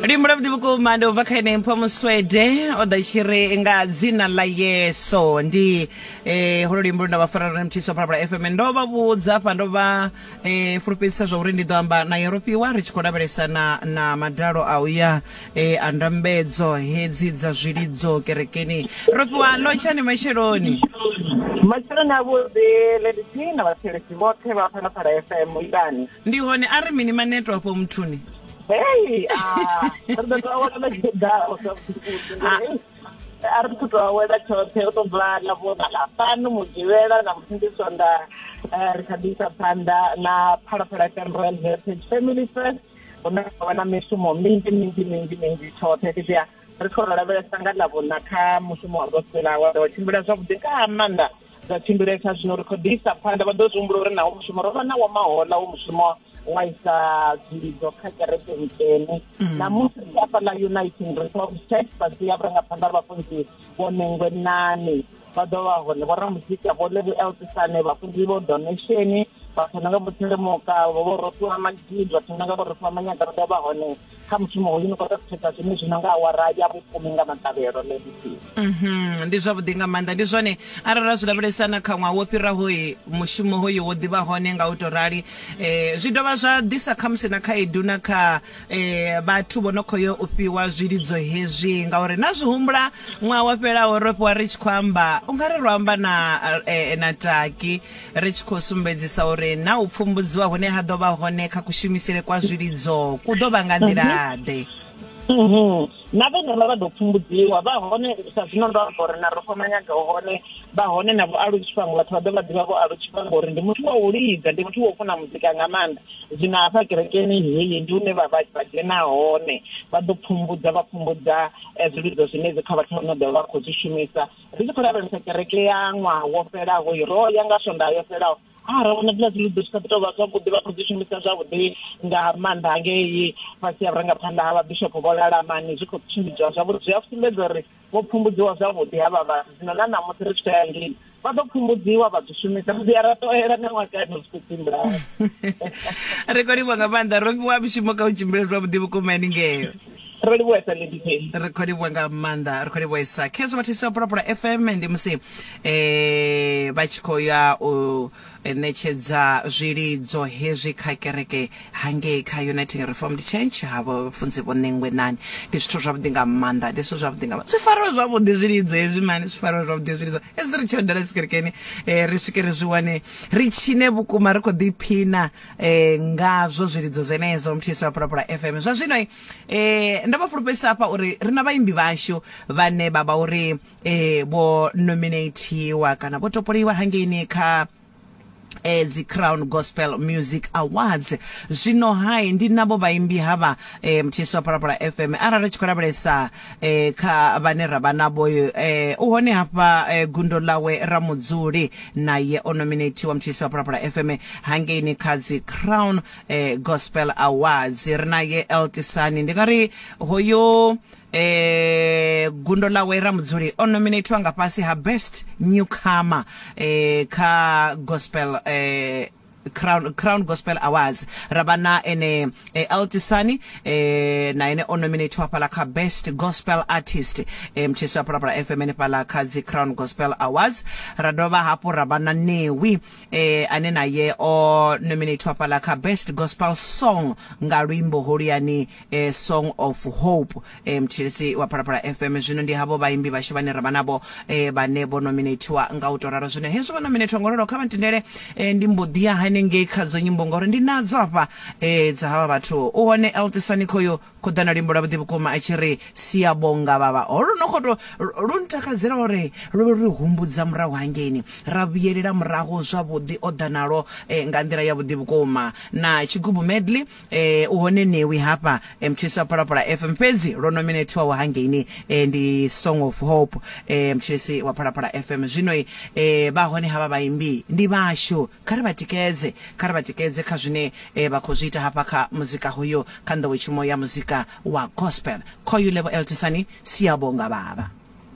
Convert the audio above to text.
luimbo lwavhuḓi vhukuma ndi ubva kha ene mpho muswede o ḓa tshi ri nga dzina ḽa yeso ndi eh, holo luimbo lu nda vha fara lone mthiso phalaphala fm ndo vha vhudza fha ndo vha eh, fulufhedzisa zwa uri ndi ḓo amba na yerofiwa ri tshi khou lavhelesa na, na madalo a uya eh, a ndambedzo hedzi dza zwilidzo kerekeni rofiwa ḽo tshani matsheloni matsheloni a vhuḓi ledisi na vhathelesi vhoṱhe vha phalaphala fm itani ndi hone a ri mini maneto afho muthuni Hey, ah, ri ḓo tou awela na tshiḓaho sa vhuḓi. A ri ḓo tou awela tshoṱhe u to bva na vho na ḽa fhano mugivhela na musi ndi sonda eh, ri kha ḓi isa phanḓa na phalaphala FM Royal Heritage Family First hune ha vha na mishumo minzhi minzhi minzhi minzhi tshoṱhe fhedziha ri khou lavhelesa nga ḽa vhona kha mushumo wa gospel awa ḓo tshimbila zwavhuḓi nga maanḓa zwa tshimbilesa zwino ri khou ḓi isa phanḓa vha ḓo zwi humbula uri nawo mushumo ro vha na wa mahola wo mushumo wa isa dzilidzo kha kereke nkene mm. na musi ri afha ḽa uniting reformed church vha ḓi ya vhurangaphanḓa vhafunzi vho nengwe nane vha ḓo vha hone vho ramuzika vho levi eltisane vhafunzi vho donation vhathu na nga vho thelemoka vho vho rofiwa magidi vhathu na nga vho rofiwa manyagaro ḓo vha hone kha mushumo hoyu ni khou tou thetsa zwine zwi no nga awara ya vhufumi nga maṱavhelo ledisi mhm, ndi zwavhuḓi nga maanḓa ndi zwone arali ra zwi lavhelesa na kha ṅwaha wo fhirahoyi mushumo hoyu wo ḓivha hone nga u tou rali um zwi dovha zwa ḓisa khamusi na khaedu na kha um vhathu vho no khou yo u fhiwa zwilidzo hezwi ngauri na zwi humbula ṅwaha wa fhelaho ro fhiwa ri tshi khou amba u nga ri ro amba na eh, na taki ri tshi khou sumbedzisa uri na u pfumbudziwa hune ha ḓo vha hone kha kushumisele kwa zwilidzo ku ḓo vha nga nḓila-ḓe mhm. na vhene vha vha ḓo pfumbudziwa vha hone sa zwino ndo amba uri na ro thoma nyaga hone vha hone na vho alu tshifhango vhathu vha ḓo vha ḓivha vho alu tshifhango uri ndi muthu wa u lidza ndi muthu wa u funa muzika nga maanḓa zwino hafha kerekeni heyi ndi hune vha vha vha dzhena hone vha ḓo pfumbudza vha pfumbudza eh, zwilidzo zwine dzi kha vhathu vha no ḓo vha khou zwi shumisa ri tshi khou lavhelesa kereke ya ṅwaha wo fhelaho ro ya nga swondaha yo fhelaho a ra vhona dziḽa dziludo zwi sa ḓi tou vha zwavhuḓi vha khou dzi shumisa zwavhuḓi nga maanḓa hangei fhasi ya vhurangaphanḓa ha vhabishopo vho lalamani zwi khou tshimbidziwa zwavhuḓi zwi a sumbedza uri vho pfumbudziwa zwavhuḓi havha vhathu zwino na ṋamusi ri tshi tou ya ngei vha ḓo pfumbudziwa vha zwi shumisa ri ḓi a ra toela na ṅwakani zwi khou tshimbila ri khou livhwa nga maanḓa ro fhiwa mishumo kha u tshimbile zwavhuḓi vhukuma ni ngeyo ro livhuwesa lindifheni ri khou livhuwa nga maanḓa ri khou livhuwesa khezwo vhathisi vha pulapula fm ndi musi um vha tshi khou ya u ṋetshedza zwilidzo hezwi kha kereke hangei kha uniting reformed church havho funzi vho ṋengwe nani ndi zwithu zwavhuḓi nga maanḓa ndi zwithu zwavhuḓi nga maanḓa zwi fariwe zwavhuḓi zwilidzo hezwi mani zwi fariwe zwavhuḓi zwilidzo hezwi ri tshi yo dala dzikerekeni um ri swike ri zwi wane ri tshine vhukuma ri khou ḓiphina eh ngazwo zwilidzo zwenezwo mthisi wa pulapula fm zwa zwino eh, eh ndo vha fulufhedzisa hafha uri ri na vhaimbi vhashu vhane vha vha uri eh vho nominatiwa kana vho topoliwa hangeini kha eh dzi Crown Gospel Music Awards zwino hai ndi navho vhaimbi hava eh mthisi wa Parapara FM arali tshi khou lavhelesa e, kha vhane ra vha navho e, u hone hafha e, gundo ḽawe ra mudzuli naye o nominathiwa mutshisi wa Phalaphala FM hangeini kha dzi Crown e, Gospel Awards ri naye Eltisani ndi nga ri hoyo e, gundo ḽawe ra mudzuli o nominathiwa nga fhasi ha best newcomer e, kha gospel e, Crown, Crown Gospel Awards ra vha na ene eh, El Tisani eh, na ene o nominatiwa fhala kha best gospel artist eh, mtshisi wa Phalaphala FM henefhala kha dzi Crown Gospel Awards ra dovha hafhu ra vha na Newi eh, ane naye o nominatiwa fhala kha best gospel song nga luimbo holuyani eh, song of hope eh, mthetshelesi wa phalaphala fm zwino ndi havho vhaimbi vhashu vhane ra vha navho eh, vhane vho nominatiwa nga u to ralo zwino hezwi vho nominatiwa nga u ralo kha vha ntendele eh, ndi mbo ḓi ya hanengei kha dzo nyimbo ngauri ndi nadzo hafha eh, dza havha vhathu u hone eltisani khoyo khou ḓa na luimbo lwavhuḓi vhukuma a tshi ri siyabonga vhavha holu no khoto lu ntakadzela uri lu ri humbudza murahu hangeini ra vhuyelela murahu zwavhuḓi o ḓa nalo eh, nga nḓila yavhuḓi vhukuma na tshigubu medley eh u hone Newi hafha eh, mutshilisi wa Phalaphala FM fhedzi lwo nominethiwaho hangeini eh, ndi Song of Hope eh, mutshilisi wa Phalaphala FM zwino eh, vha hone havha vhaimbi ndi vhashu kha ri vha tikedze kha ri vha tikedze kha zwine eh, vha khou zwi ita hafha kha muzika hoyo kha nḓowetshumo ya muzika wa gospel khoyu levo eltisani siyabonga baba